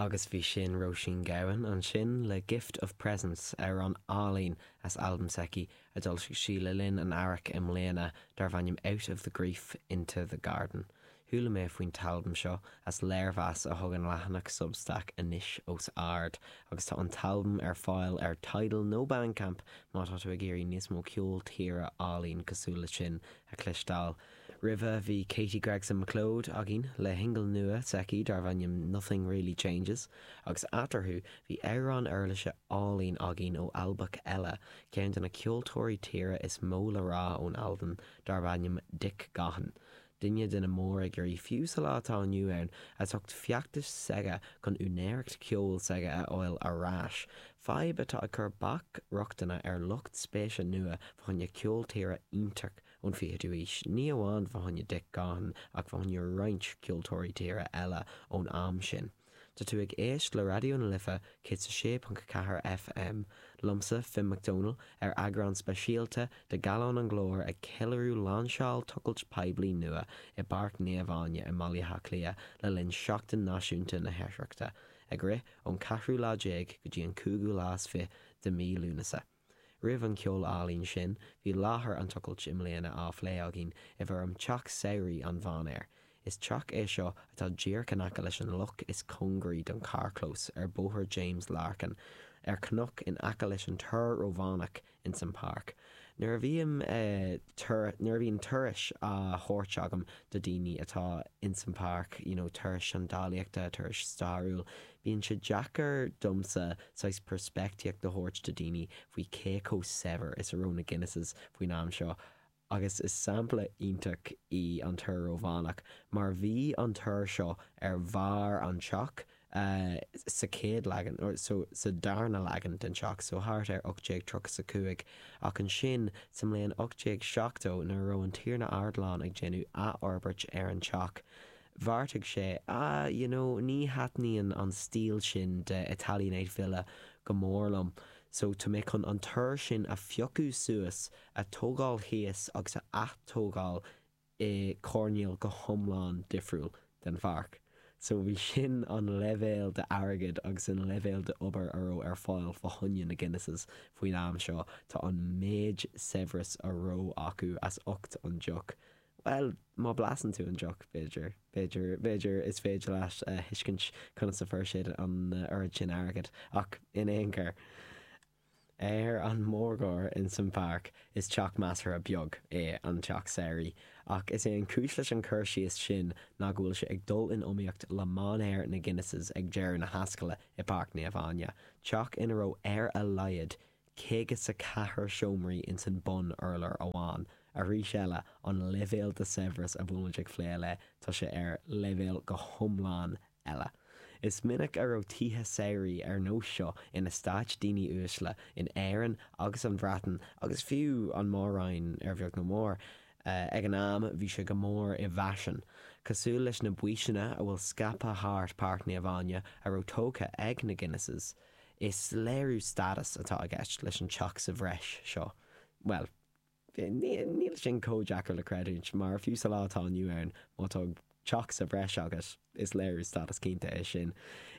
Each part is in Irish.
Agus bhí sin Róisín Gabhann ansin le Gift of Presence, amhrán álainn as albam s'aici a d'fhoilsigh sí le linn an Earraigh i mbliana darbh ainm Out of the Grief, Into the Garden. Chuala mé faoin t-albam seo as léirmheas a thug an leathanach Substack Anois os Ard agus tá an t-albam ar fáil ar Tidal nó Bandcamp má tá tú ag iarraidh níos mó ceol tíre álainn cosúil le sin a chloisteáil. Roimhe bhí Katie Gregson-MacLeod againn le shingil nua s'aici darbh ainm 'Nothing Really Changes' agus eatarthu bhí amhrán uirlise álainn againn ó Albach eile, ceann de na ceoltóirí tíre is mó le rá ón Albain darbh ainm Dick Gaughan, duine de na mórfhigiúirí fiú sa lá atá inniu ann as ucht feachtas s'aige chun úinéireacht ceoil s'aige a fháil ar ais, fadhb atá ag cur bac rochtana ar lucht spéise nua fá choinne ceol tíre iontach ón 20ú haois, ní amháin fá choinne Dick Gaughan ach fá choinne roinnt ceoltóirí tíre eile ón am sin. Tá tú ag éist le Raidió na Life 106.4 FM, liomsa, Finn Mac Dónaill, ar eagrán speisialta de Gallán an Ghlóir ag ceiliúradh lainseáil tochailt poiblí nua i bPáirc Naomh Áine i mBaile Átha Cliath le linn Seachtain Náisiúnta na hOidhreachta, ag rith ón ceathrú lá déag go dtí an cúigiú lá is fiche de mhí Lúnasa. Roimh an gceol álainn sin, bhí láthair an tochailt i mbliana á phlé againn i bhfoirm Teach Samhraidh an Mhainéir. Is teach é seo atá díreach in aice leis an loch is cóngaraí don charrchlós ar Bhóthar James Larkin, ar cnoc in aice leis an Túr Rómhánach ins an Páirc. Nuair a bhím nuair a bhíonn turais á thabhairt agam do daoine atá ins an Páirc, you know turais seandálaíochta, turais stairiúil, Bíonn sé deacair domsa saghas peirspictíocht a thabhairt do daoine faoi cé chomh saibhir is a raibh na Guinnesses faoin am seo, agus is sampla iontach í an Túr Rómhánach, mar bhí an túr seo ar bharr an teach sa chéad leagan, nó sa darna leagan den teach, so thart ar 1835, ach ansin sa mbliain 1870, nuair a raibh an Tiarna Ardoileán ag déanamh athfhorbairt ar an teach, Bheartaigh sé, 'Ah, you know, ní thaitníonn an stíl sin de Italianate Villa go mór liom, so tá mé chun an túr sin a phiocadh suas, a tógáil thíos agus a athtógáil i coirnéal go hiomlán difriúil den pháirc. So bhí sin an leibhéal d'airgead agus an leibhéal d'obair a raibh ar fáil fá choinne na Guinnesses faoin am seo. Tá an méid saibhreas a raibh acu as ucht an deoch Bhuel, má bhlasann tú an deoch, b'fhéidir, b'fhéidir, b'fhéidir is féidir leat a thuiscint conas a fuair siad an oiread sin airgid, ach in aon chor, ar an mórgóir insan Pháirc, is teach measartha beag é an teach samhraidh, ach is é an chúis leis an chur síos sin ná go bhfuil sé ag dul in iomaíocht le mainéar na Guinnesses ag deireadh na hascaille i bPáirc Naomh Áine, teach ina raibh ar a laghad 54 seomraí ins an mbun urlár amháin. Arís eile, an leibhéal de saibhreas a bhfuilimid ag phlé le, tá sé ar leibhéal go hiomlán eile. Is minic a raibh tithe samhraidh ar nós seo in estáit daoine uaisle in Éirinn agus an Bhreatain agus fiú an Mór-roinn ar bheag nó mór. Ag an am bhí sé go mór i bhfaisean, cosúil leis na baoiseanna a bhfuil scaipthe thart Páirc Naomh Áine a raibh tógtha ag na Guinnesses, Is léiriú stádas atá i gceist leis an teach sa bhreis seo, bhuel, níl sin chomh deacair le creidiúint, mar fiú sa lá atá inniu ann, má tá teach sa bhreis agat, is léiriú stádas cinnte é sin.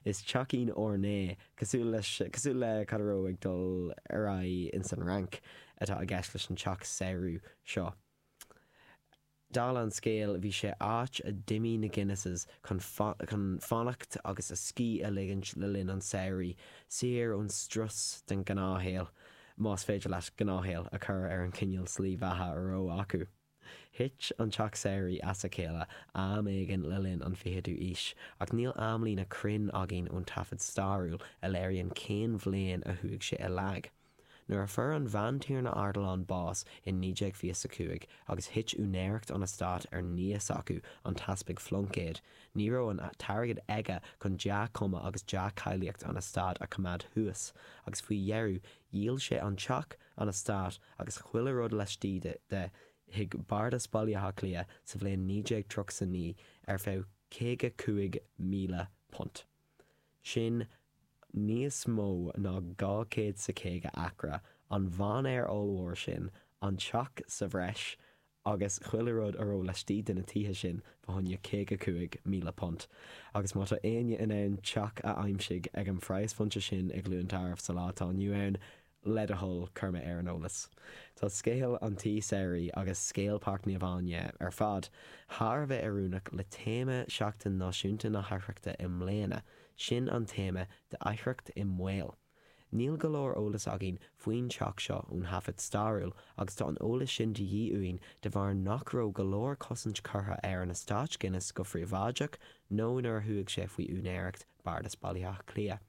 Is teachín orné, cosúil leis, cosúil le cad a raibh ag dul ar aghaidh insan Fhrainc, atá i gceist leis an teach samhraidh seo. Dála an scéil, bhí sé áit a d'imigh na Guinnesses chun fanacht agus a scíth a ligint le linn an tsamhraidh, saor ón strus den ghnáthshaol, más féidir leat gnáthshaol a chur ar an chineál slí bheatha a raibh acu. Thit an teach samhraidh as a chéile am éigin le linn an ficheadú aois, ach níl amlíne chruinn againn ón taifead stairiúil a léiríonn cén bhliain a chuaigh sé i léig. Nuair a fuair an Bhantiarna Ardilaun bás in 1925 agus thit úinéireacht an eastáit ar nia s'acu, an tEaspag Phluincéad, ní raibh an t-airgead aige chun dea-chuma agus dea-cháilíocht an eastáit a choimeád thuas, agus faoi dheireadh dhíol sé an teach, an eastát agus chuile rud laistigh de chuig Bardas Bhaile Átha Cliath sa bhliain 1939 ar feadh £55,000. sin níos mó ná 250 acra, an mhainéar ollmhór sin, an teach sa bhreis, agus chuile rud a raibh laistigh de na tithe sin, faoi choinne £55,000. Agus má tá éinne in ann teach a aimsigh ag an phraghas phointe sin i gCluain Tarbh sa lá atá inniu ann, le do thoil cuir mé ar an eolas. Tá scéal an tí samhraidh agus scéal Pháirc Naomh Áine ar fad thar a bheith oiriúnach le téama Sheachtain Náisiúnta na hOidhreachta i mbliana, sin an téama de 'Oidhreacht i mBaol'. Níl go leor eolas againn faoin teach seo ón thaifead stairiúil agus tá an eolas sin de dhíth uainn de bharr nach raibh go leor cosaint curtha ar an eastáit Guinness go phríobháideach nó nuair a chuaigh sé faoi úinéireacht Bardas Bhaile Átha Cliath.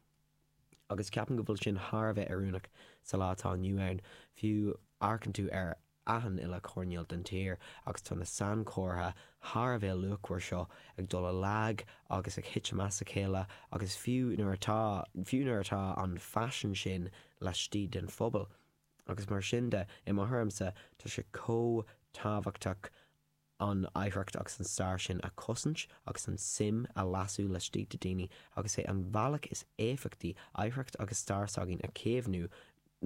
agus ceapann go bhfuil sin thar a bheith oiriúnach sa lá atá inniu ann, fiú amharcann tú ar achan uile choirnéal den tír agus tá na sainchomhartha thar a bheith luachmhar seo ag dul i léig agus ag titim as a chéile agus fiú nuair atá, fiú nuair atá an phaisean sin laistigh den phobal agus mar sin de, i mo thuairimse, tá sé chomh tábhachtach an oidhreacht agus an stair sin a chosaint agus an tsuim a lasú laistigh de dhaoine agus is é an bealach is éifeachtaí oidhreacht agus stair s'againn a chaomhnú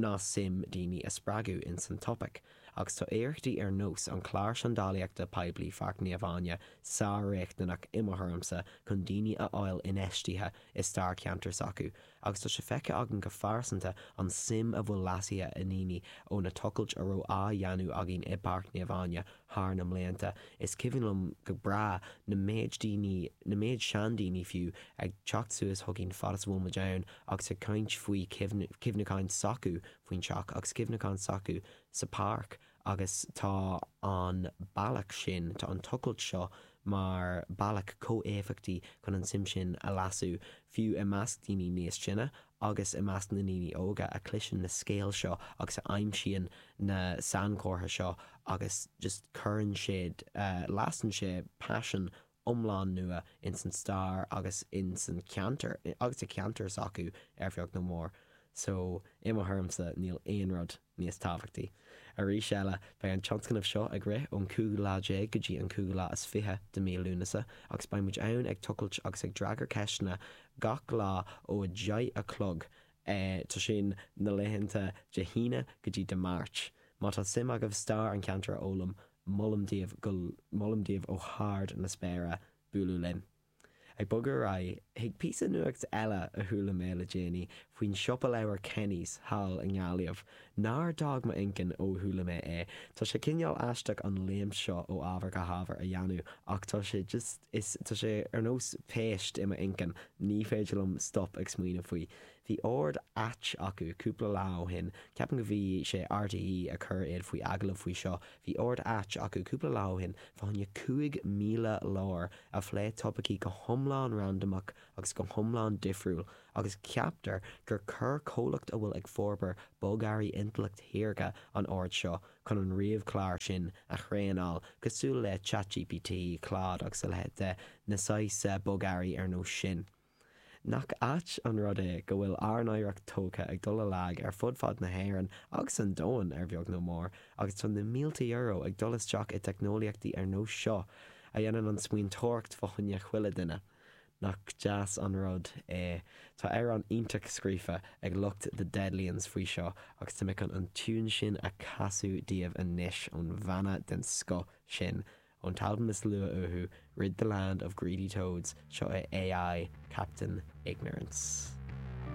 ná suim daoine a spreagadh ins an topaic agus tá iarrachtaí ar nós an chláir seandálaíochta poiblí Pháirc Naomh Áine sár-riachtanach i mo thuairimse chun daoine a fháil infheistithe i stair ceantar s'acu agus tá sé feicthe againn go phearsanta an tsuim a bhfuil lasaithe i ndaoine ó na tochailt a raibh á dhéanamh againn i bPáirc Naomh Áine thar na blianta, is cuimhin liom go breá na méid daoine, na méid seandaoine fiú, ag teacht suas chugainn fad is a bhfuil muid ann agus ag caint faoi chuimhneacháin s'acu faoin teach agus cuimhneacháin s'acu sa pháirc agus tá an bealach sin, tá an tochailt seo, mar bhealach chomh éifeachtaí chun an tsuim sin a lasú, fiú i measc daoine níos sine agus i measc na ndaoine óga a chloiseann na scéal seo agus a aimsíonn na sainchomhartha seo agus just cuireann sé, lasann sé paisean iomlán nua ins an stair agus ins an ceantar agus sa cheantar s'acu ar bheag nó mór. So, i mo thuairimse, níl aon rud níos tábhachtaí. Arís eile, beidh an tionscnamh seo ag rith ón 15ú lá go dtí an 25ú lá de mí Lúnasa agus beidh muid ann ag tochailt agus ag freagairt ceisteanna gach lá ó a deich a chlog tá sin na laethanta Dé hAoine go dtí Dé Máirt. Má tá suim agaibh stair an cheantair a fhoghlaim, molaim daoibh go molaim daoibh go hard na spéire bualadh linn. Ag bogadh ar aghaidh, chuig píosa nuacht eile a chuala mé le déanaí faoin siopa leabhar Kenny's thall i nGaillimh nár d'fhág m'inchinn ó chuala mé é. Tá sé cineál aisteach an léim seo ó ábhar go hábhar a dhéanamh ach tá sé just. Is tá sé ar nós péist i m'inchinn. Ní féidir liom stop ag smaoineamh faoi. Bhí ord ait acu cúpla lá ó shin. Ceapaim go bhí sé RTÉ a chuir iad faoi agallamh faoi seo. Bhí ord ait acu cúpla lá ó shin fá choinne cúig míle leabhar a phlé topaicí go hiomlán randamach agus go hiomlán difriúil agus ceaptar gur chuir comhlacht a bhfuil ag forbairt bogearraí intleacht shaorga an ord seo chun an ríomhchlár sin a thraenáil, cosúil le ChatGPT, Claude agus a leithéid de na saghsa bogearraí ar nós sin. Nach ait an rud é go bhfuil ár n-oidhreacht tógtha ag dul i léig ar fud fad na hÉireann agus an domhain ar bheag nó mór agus tá na mílte euro ag dul isteach i dteicneolaíochtaí ar nós seo a dhéanann an smaointeoireacht fá choinne chuile dhuine Nach deas an rud é. Tá amhrán iontach scríofa ag lucht The Deadlions faoi seo agus tá mé chun an tiún sin a chasadh daoibh anois ón bhanna den scoth sin, ón t-albam is nua uathu, Rid the Land of Greedy Toads, seo é AI, Captain Ignorance.